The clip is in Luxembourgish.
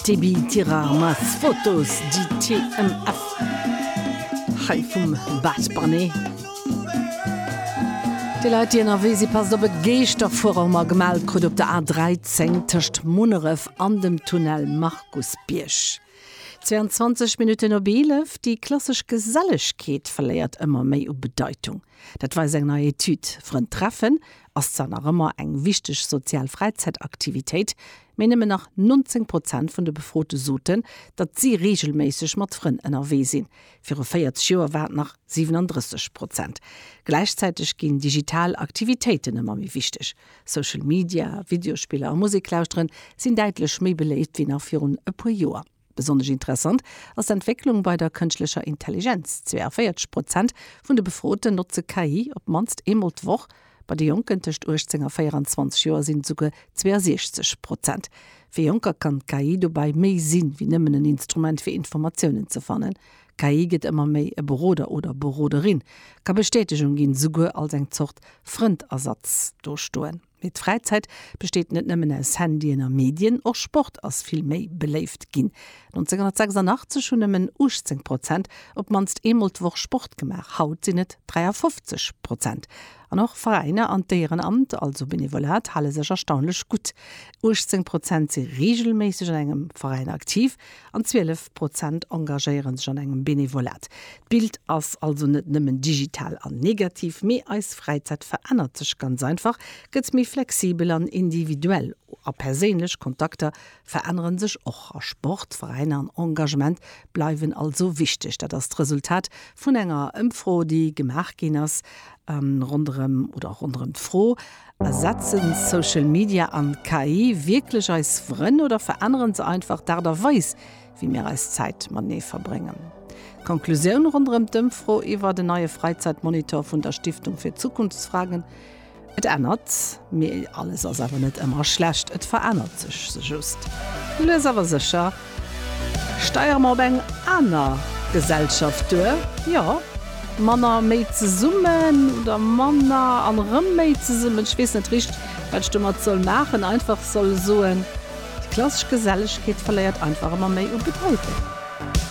Tibi tirar mas fotos di TMF Hei vum Bad Bunny. Déi Leit déi ënnerwee si passt op, et geescht a Fuerer hu mer gemellt krut op der A13 tëscht Munneref an dem Tunnel Markusbierg. 22 Minutten op 11, Déi klassesch Gesellegkeet verléiert ëmmer méi u Bedeitung, dat weist eng nei Etüd. Frënn treffen, ass zwar nach ëmmer eng wichteg sozial Fräizäitaktivitéit, mee nëmmen nach 19 Prozent vun de Befrote soten, datt si reegelméisseg mat Frënn ënnerwee sinn. Viru 40 Joer war et nach 37 Prozent. Gläichzäiteg ginn digital Aktivitéiten ëmmer méi wichteg. Social Media, Videospiller a Musek lauschteren sinn däitlech méi beléift wéi nach virun e puer Joer. Besonnesch interessant ass d'Entwécklung bei der kënschtlecher Intelligenz, 42 Prozent vun de Befroten notze KI op d'mannst eemol d'Woch. Bei de Jonken tëscht 18 a 24 Joer sinn et esouguer 62 Prozent. Fir Jonker kann d'KI dobäi méi sinn, wéi nëmmen en Instrument fir Informatiounen ze fannen. D'KI gëtt ëmmer méi e Beroder oder Beroderin, ka Bestätegung ginn, esouguer als eng Zort Frëndersatz dostoen. Mee d'Fräizäit besteet net nëmmen aus Handyen a Medien, och Sport ass vill méi beléift ginn. 1986 hunn nëmmen 18 Prozent op d'mannst eemol d'Woch Sport gemaach, haut sinn et 53 Prozent. An och Veräiner an d'Éierenamt, also Benevolat, hale sech erstaunlech gutt. 18 Prozent si reegelméisseg an engem Veräin aktiv, an 12 Prozent engagéiere sech an engem Benevolat. D'Bild ass also net nëmmen digital an negativ, mee eis Fräizäit verännert sech ganz einfach, gëtt méi flexibel an individuell, a perséinlech Kontakter verännere sech och. A Sport, Veräiner an Engagement bleiwen also wichteg. Dat ass d'Resultat vun enger Ëmfro, déi gemaach ginn ass ronderëm oder ronderëm d'Fro, Ersetzen Social Media an KI wierklech eis Frënn oder veränneren se einfach d'Aart a Weis, wéi mir eis Zäit matenee verbréngen? D'Konklusioun ronderëm d'Ëmfro iwwer en neie Fräizäitmonitor vun der Stiftung für Zukunftsfragen, Et ännert, mee alles ass awer net ëmmer schlecht, et verännert sech se just lues awer sécher. Steiere mer op eng aner Gesellschaft duer? Jo. Manner méi zesummen oder manner an erëm méi zesummen? Ech weess net richt, wat ech domat soll maachen. Einfach soll soen, déi klassesch Gesellegkeet verléiert einfach ëmmer méi u Bedeitung.